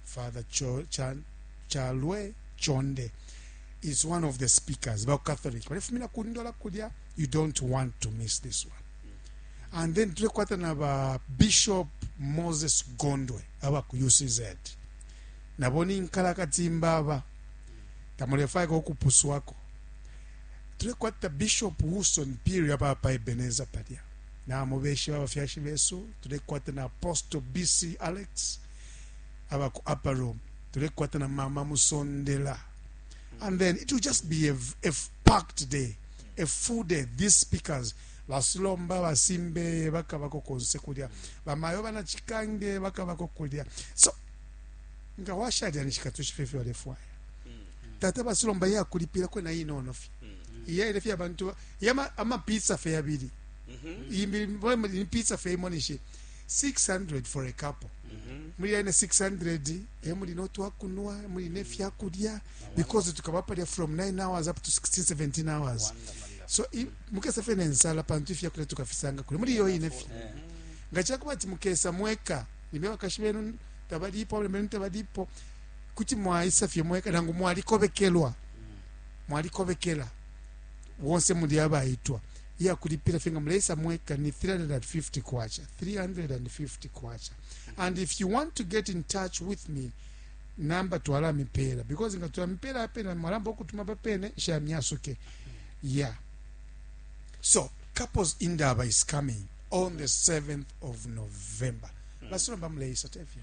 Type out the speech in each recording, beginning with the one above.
father Cho, Cha, chalwe chonde is one of the speakers ba catholic balifumina ku ndola kulya you don't want to miss this one and then tulekwata na ba bishop moses gondwe aba ku ucz nabo ni nkalakatimba aba tamulefayako okupuswako tulekwata bishop wilson piri aba pa ebeneza palya namubeshe babafyashi besu tulekwata na apostle bc alex mm. aba ku upper room tulekwata na mama musondela and then it will just be a, a packed day a full day these speakers basilomba basimbeye bakabako konse kulya bamayo banachikange bakabako kulya so nga washalya nishikatushi fye fye walefwaya tata basilomba ye akulipila kwena inono fye iyaile fye abantu yama- amapizza fye yabili imbi ni pizza fye imo nishi 600 for a couple mm -hmm. muli yene 600 emuli notwakunwa emuli nefyakulya because tukaba palya from 9 hours up to 16 17 hours Wonderful. so mukesa fe nensala pantu ifyakulya tukafisanga kule muli iyo yine fye mm-hmm. nga cakuba ati mukesa mweka nimbe bakashi benu tabalipo abana benu tabalipo kuti mwaisa fye mweka nangu mwalikobekelwa mm. mwalikobekela wonse muli abaitwa iya kulipila fye nga muleisa mweka ni 350 kwacha 350 kwacha and if you want to get in touch with me namba twalamipela because nga tulamipela apena mwalamba okutuma papene shamyasuke yeah so couples indaba is coming on the 7th of november mm. basilomba muleisa tefya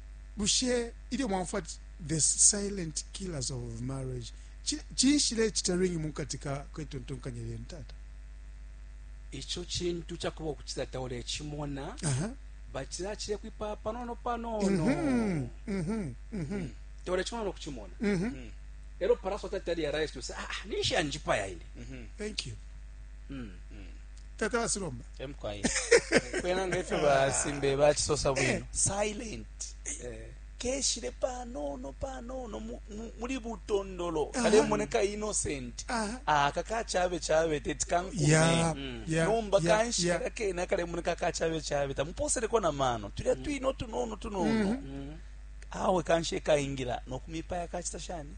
bushe ilyo mwaumfwa ati the silent killers of marriage cinshi lecita ringi mu kati kwetontonkanya lyenu tata ico cintu cakuba ukuti tata ulecimona uh -huh. batila cile kwipa panono panono mm -hmm. mm -hmm. mm -hmm. tolechimona nokuchimona mm -hmm. mm. ero paraso tatali arise to say ah, ah nisha njipaya ine mm -hmm. thank you mm. Mm. takalasi lomba emkwai kwena ngefyo basimbe bachisosa bwino eh. silent eh. keshile panono panono muli butondolo kalemoneka innocent aka kachabe chabe teti kankume mm. nomba kanshi kaka kena kalemoneka kachabe chabe tamuposeleko na mano tulya mm. twino tunono tunono mm-hmm. mm. awe kanshi ekaingila nokumipaya kachita shani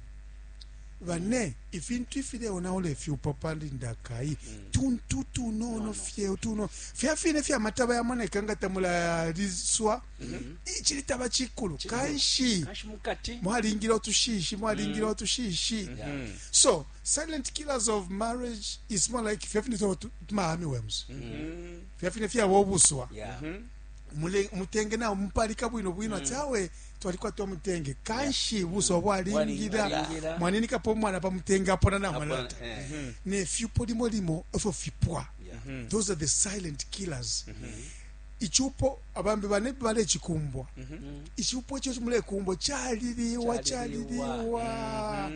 bane mm. ifintu ifileonaula ifyupo pali ndakai mm. tuntu tunono no, fye tuno fya fine fya mataba yamoneka nga tamulaliswa mm -hmm. ichili taba chikulu kanshi mwalingile otushishi mwalingile mm. otushishi mm -hmm. so silent killers of marriage is more like fya fine fya mahami wems mm -hmm. fya fine fya wobuswa yeah. mm -hmm. mule- umutenge nawo mupalika bwino bwino ati awe twalikwata umutenge kanshi buso bwalingila Bwalingila. mwaninikapo umwana pa mutenge apona namwalata Apona, eh. nefyupo limo limo efyo fipwa Yeah. those are the silent killers icupo abambi bane balekikumbwa icupo ekyo mulekumbwa kyaliriwa Kyaliriwa. kyaliriwa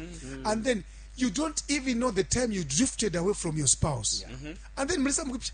and then you don't even know the time you drifted away from your spouse and then mulisa mukipya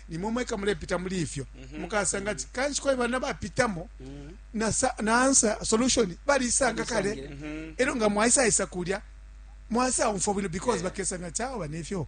nimwe mweka mulepita muli ifyo mhm. mukasanga ati kanshi kwali bana bapitamo mhm. na answer solution balisanga kale mhm. ero nga mwaisa isa kulya mwasa umfwa bwino because bakesanga chawa nefyo